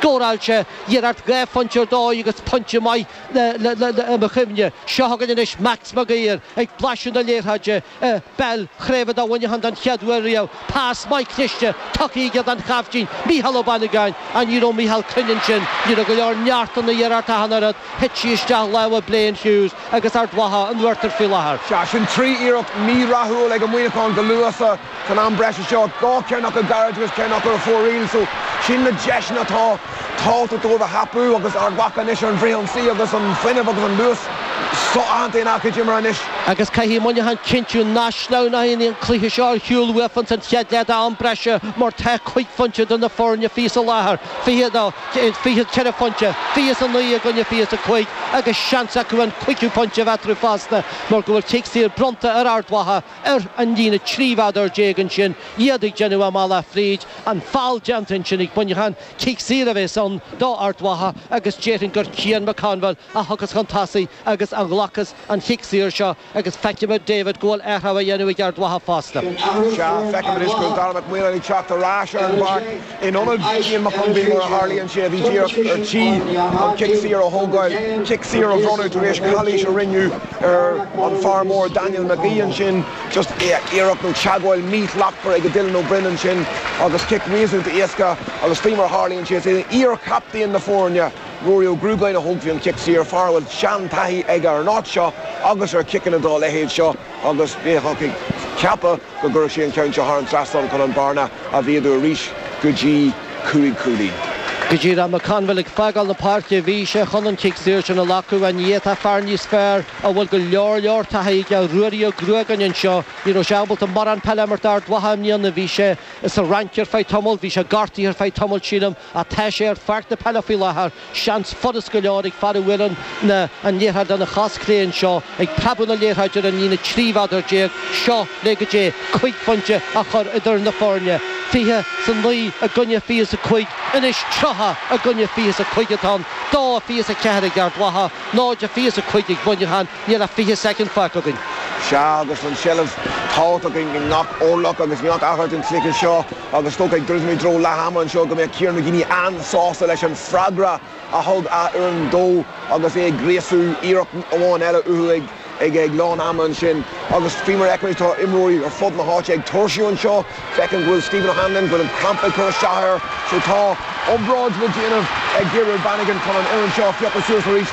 Scóráilte, iarracht dhá phointe ar dóigh agus pointe más maith mo chuimhne. Seo chugainn anois Max Mag Uidhir ag blaiseadh na liathróide, peil chraoibhe do Mhuineachán don chéad uair riamh, pas maith cliste tugtha aige don chaiftín, Mícheál Ó Baineagáin, á ní raibh Mícheál cruinn ansin, ní raibh go leor neart ina iarracht ach an oiread, thit sí isteach i lámha Blaine Hughes agus Ard Mhacha ar ruathar faoi láthair. Sea, sin trí iarracht mhírathúil ag Muineachán go luath sa. San am breise seo, dhá cheann acu gairid agus ceann acu ar fóraoil so, sin na deiseanna atá tábhachtach dóibh a thapú agus Ard Mhacha anois ar an bhfrithionsaí agus an fuinneamh agus an luas so-aitheanta ina gcuid imeartha anois. Agus caithfidh Muineachán cinntiú nach sleamhnaíonn an cluiche seo ar shiúl uathu ins an chéad leath d'am breise mar tá cúig phointe idir na foirne faoi láthair, fiche, no, fiche ceithre phointe, fiche is a naoi i gcoinne fiche is a cúig agus seans acu an cúigiú pointe a bheith eatarthu fosta mar go bhfuil cic saor bronnta ar Ard Mhacha. ar an líne 13 mhéadar ansin, iad ag déanamh a mbealach fríd, an feall déanta ansin ag Muineachán, cic saor a bheas ann d'Ard Mhacha agus déarfainn gur Cian McConville a thiocfas chun tosaigh agus a ghlacfas an cic saor seo agus feicfimid, David, go bhfuil athrú á dhéanamh ag Ard Mhacha fosta. Sea, feicfimid anois go bhfuil Darragh Mac Maoláin ag teacht ar ais ar an bpáirc. In ionad Cian McConville, mar a tharlaíonn sé, a bhí díreach ar tí an cic saor a thógáil, cic saor a bronnadh tar éis calaois a rinneadh ar an fhear mór Daniel Magee ansin, just iarracht nó teagmháil mhíshlachtmhar ag Dylan Ó Broin ansin agus cic réasúnta éasca agus faoi mar a tharlaíonn sé, is é iarchaptaen na foirne, Ruairí Ó Gruagáin a thógfaidh an cic saor, fear a bhfuil seantaithí aige ar an áit seo agus ar chiceanna dá leithéid seo. agus bheifeá ag ceapadh go gcuirfidh sé an ceann seo thar an trasnán chun an bhearna a mhéadú arís go dtí cúig chúilín. Go dtí raibh McConville ag fágáil na páirce bhí sé chun an cic saor sin a ghlacadh. Ina áit tá fear níos fearr, a bhfuil go leor leor taithí aige, Ruairí Ó Gruagáin anseo, ní raibh sé ábalta mórán peile a imirt d'Ard Mhacha i mbliana. Bhí sé sa Fhrainc ar feadh tamaill, bhí sé gortaithe ar feadh tamaill sílim, ach tá sé ar pháirc na peile faoi láthair. Seans furast go leor ag fear a bhuaileann an liathróid lena chos chlé anseo, ag preabadh na liathróide ar an líne 13 mhéadar, seo le go dtí cúig phointe a chur idir na foirne. Fiche 's a naoi i gcoinne fiche 's a cúig, anois tríocha i gcoinne fiche 's a cúig atá ann, dó a fiche 's a ceathair ag Ard Mhacha, náid a fiche 's a cúig ag Muineachán, níl ach fiche soicind fágtha againn. Sea, agus an tseilbh tábhachtach againn i ngach orlach agus i ngach achar den chluiche seo, Ach is dócha, ag druidim i dtreo leath ama anseo, go mbeidh Kieran McGeeney an-sásta leis an freagra a thug a fhoireann dó agus é ag gríosú iarracht amháin eile uathu ag lán ama ansin. Agus faoi mar a fheicimid, tá imreoirí ar fud na háite ag tuirsiú anseo. Feicim go bhfuil Stephen O'Hanlon, go bhfuil an crampa ag cur isteach air, so tá obráid le déanamh ag Gabriel Bannigan chun an fhoireann seo a phiocadh suas arís.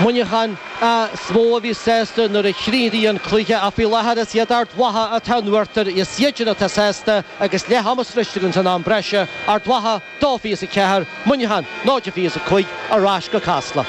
Muineachán. is mó a bhíos sásta nuair a chríochnaíonn an cluiche, ach faoi láthair is iad Ard Mhacha atá in uachtar, is iadsan atá sásta agus leath ama sroichte againn san am breise, Ard Mhacha, dó fiche is a ceathair, Muineachán, náid fiche is a cúig, ar ais go Casla.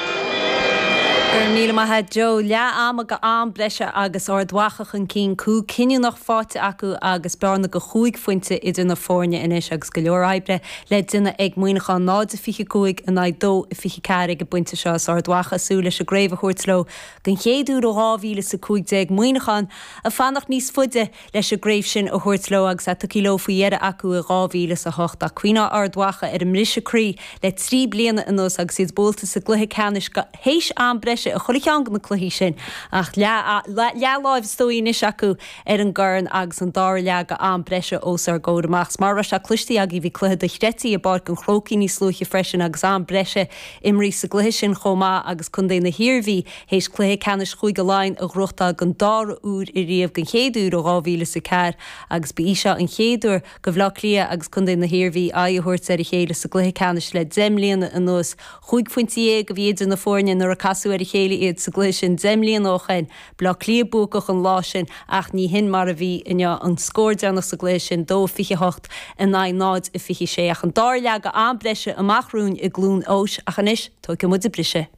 Go raibh míle maith a't Joe, leath ama go am breise agus Ard Mhacha chun cinn, cúl cinniúnach faighte acu agus bearna go chúig phointe idir na foirne anois agus go leor oibre le déanamh ag Muineachán, 0-25 in aghaidh 2-24 ag an bpointe seo. Is Ard Mhacha ag súil leis an gcraobh a thabhairt leo den chéad uair ó 2015, Muineachán ag fanacht níos faide leis an gcraobh sin a thabhairt leo agus í tugtha leo faoi dheireadh acu i 2008. Ach cuimhneoidh Ard Mhacha ar a mbriseadh croí le trí bliana anuas agus iad buailte sa gcluiche ceannais go théis am breise a chur i gceann de na cluichí sin, ach leathláimh is dóigh anois acu ar an gcorn agus an dara leath go am breise os ár gcomhair amach. Is mar a raibh sé cloistí againn, bhí cluiche dochreidte i bPáirc an Chrócaigh níos luaithe freisin agus am breise imeartha sa gcluiche sin chomh maith agus Contae na hIarmhí théis cluiche ceannais Chúige Laighean a ghnóthachtáil den dara huair riamh, den chéad uair ó 2004, agus ba í seo an chéad uair. go Bhaile Átha Cliath agus contae na hIarmhí aghaidh a thabhairt ar a chéile sa gcluiche ceannais le deich mbliana anuas. Chúig phointe dhéag a bhí idir na foirne nuair a casadh ar a chéile iad sa gcluiche sin deich mbliana ó shin. Baile Átha Cliath buacach an lá sin ach ní hin mar a bhí inniu. An scór deireanach sa gcluiche sin, dó a fiche a hocht in aghaidh náid a fiche a sé, ach an dara leath go am breise amach romhainn i gCluain Eois ach anois, tóigfidh muid briseadh.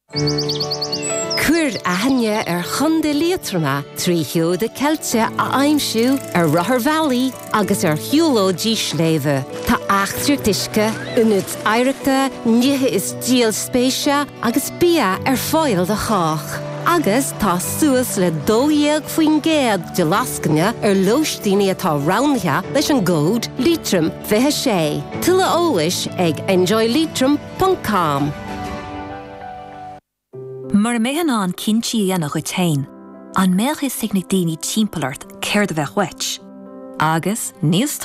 Cuir aithne ar Chontae Liatroma trí sheoda ceilte a aimsiú ar rotharbhealaí agus ar shiúlóidí sléibhe. Tá eachtraíochtaí uisce, ionaid oidhreachta, nithe is díol spéise agus bia ar fáil do chách. Agus tá suas le 12% de lascaine ar lóistíní atá roghnaithe leis an gcód liatroim. 26. Tuilleadh eolais ag enjoyleitrim ponc com. Mura mbeifeá in ann cinntí a dhéanamh dhuit féin, an mbeadh fhios ag na daoine timpeall ort céard a bheadh uait? Agus níos.